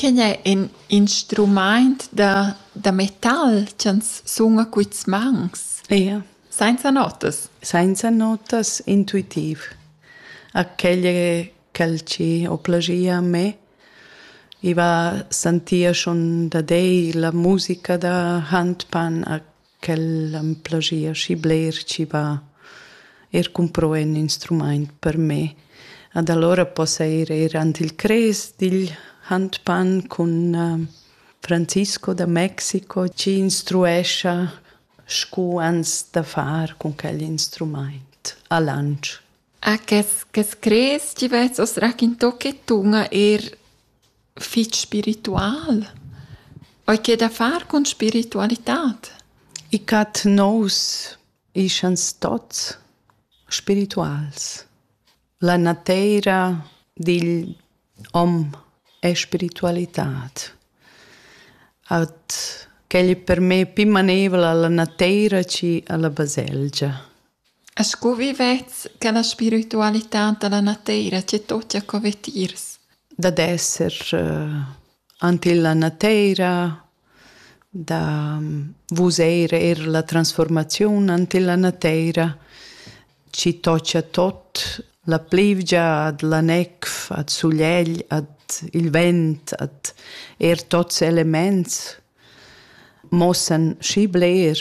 Quei ei in instrumaint da da metal ch'ans suna quists mans. Ia. Sainza notas. Sainza notas, intuitiv. Aquegl ch'el ci ho plagia a me, i va sentir schon da dei la musica da handpan a Quel am plagia schi bler chi va eir cumpro ün instrumaint per me. Ad alura possa ir eir ant il Crest digl Handpan cun Francisco da Mexico chi instruescha scu ans da far cun quel instrumaint a Lantsch. Ah, che s'crez chi vezz os raquinto che tun eir fich spiritual, eau che da far cun spiritualitad? I cat nous ischan stots spirituals. La nateira digl hom è spiritualitad. At quel è per me pü maneivel alla nateira chi alla baselgia. Scu vivets cha la spiritualità da la nateira tge tocca co vetiers? Dad esser ant illa nateira, da vuseir eir la transfuormaziun ant illa nateira, chi tocca tot, la plivgia ad la nef, ad sulegl, ad il vent, ad eir tots elemaints mossan schi bler.